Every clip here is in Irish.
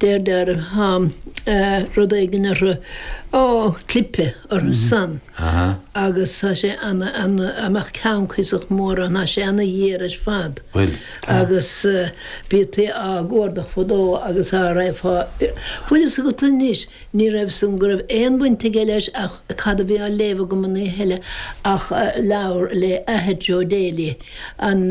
Deirtear tá rud éigin orthu, clipí ortha san agus tá sé ana ana dá mbeadh ceann cuiosach mór ann tá sé ana ghéar ar fad agus bhítí á gcuardach fadó agus dá raibh fá bhfuil 'fhios agat anois ní raibh san go raibh aon bhaint aige leis ach cad a bhí á léamh agam an oíche eile ach leabhar leis an Athair Joe Daly an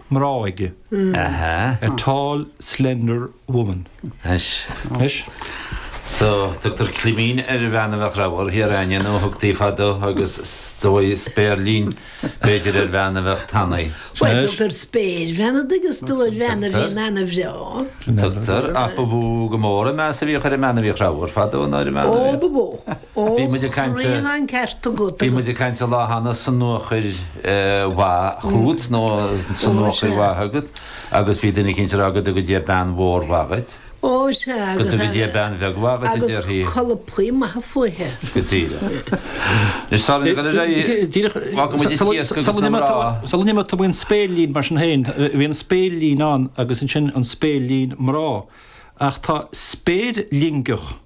mná aige, a tall slender woman. Anois, so tugtar claimín ar an bhean a bheadh ramhar, thiar againne nó thugtaí fadó agus is dóigh, spéirlín b'fhéidir ar bhean a bheadh tanaí. Bhuel tugtar spéirbhean a' dtuigeann tú ar bhean a bhíonn ana-bhreá. Tugtar, ach ba mhó go mór an meas a bhíodh ar an mbean a bhíodh ramhar fadó ná ar an mbean a bhíodh. Ó ba mhó. Ó, rinne an ceart agat. Bhí muid ag caint an lá cheana sonuachar maith chugat nó sonuachar maith agat agus bhí duine eicínt ag rá go dtuga Dia bean mhór mhaith dhuit. Ó, sea agus. Go dtuga Dia bean bheag mhaith dhuit a déarfaí. Agus colpaí maithe fúithe. Go díreach. Anois tá muid ag dul ar aghaidh. Díreach. Fágfaidh muid an t-iasc agus na mná. Sula n-imeodh tú faoin spéirlín mar sin héin, bhí an spéirlín ann agus ansin an spéirlín mná. Ach tá spéirlingeach.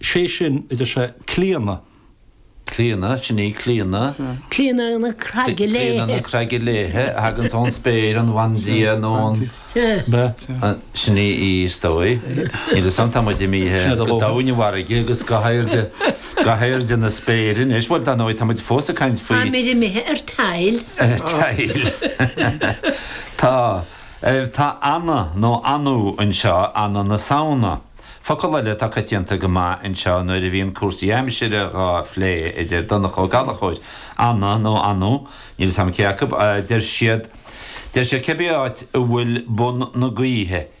sé sin idir sé Clíodhna. Clíodhna, sin í Clíodhna. Clíodhna na Craige Léithe. Clíodhna na Craige Léithe a thagans ón spéir, an bhandia nó an. Sin í í is dóigh. Níl 'fhios a'm tá muid imithe go doimhin na farraige agus go hairde, go hairde na spéire anois, bhuel dar ndóigh tá muid fós ag caint faoi. Táimid imithe ar tile. Ar tile. Tá. Tá Anna nó Anu anseo, Anna na Samhna. Focal eile atá coitianta go maith anseo nuair a bhíonn cúrsaí aimsire dhá phlé a deir Donncha Ó Gallachóir, Anna nó Anú, níl 'fhios a'm cé acu, deir siad, deir siad cibé áit a bhfuil bun na gaoithe i.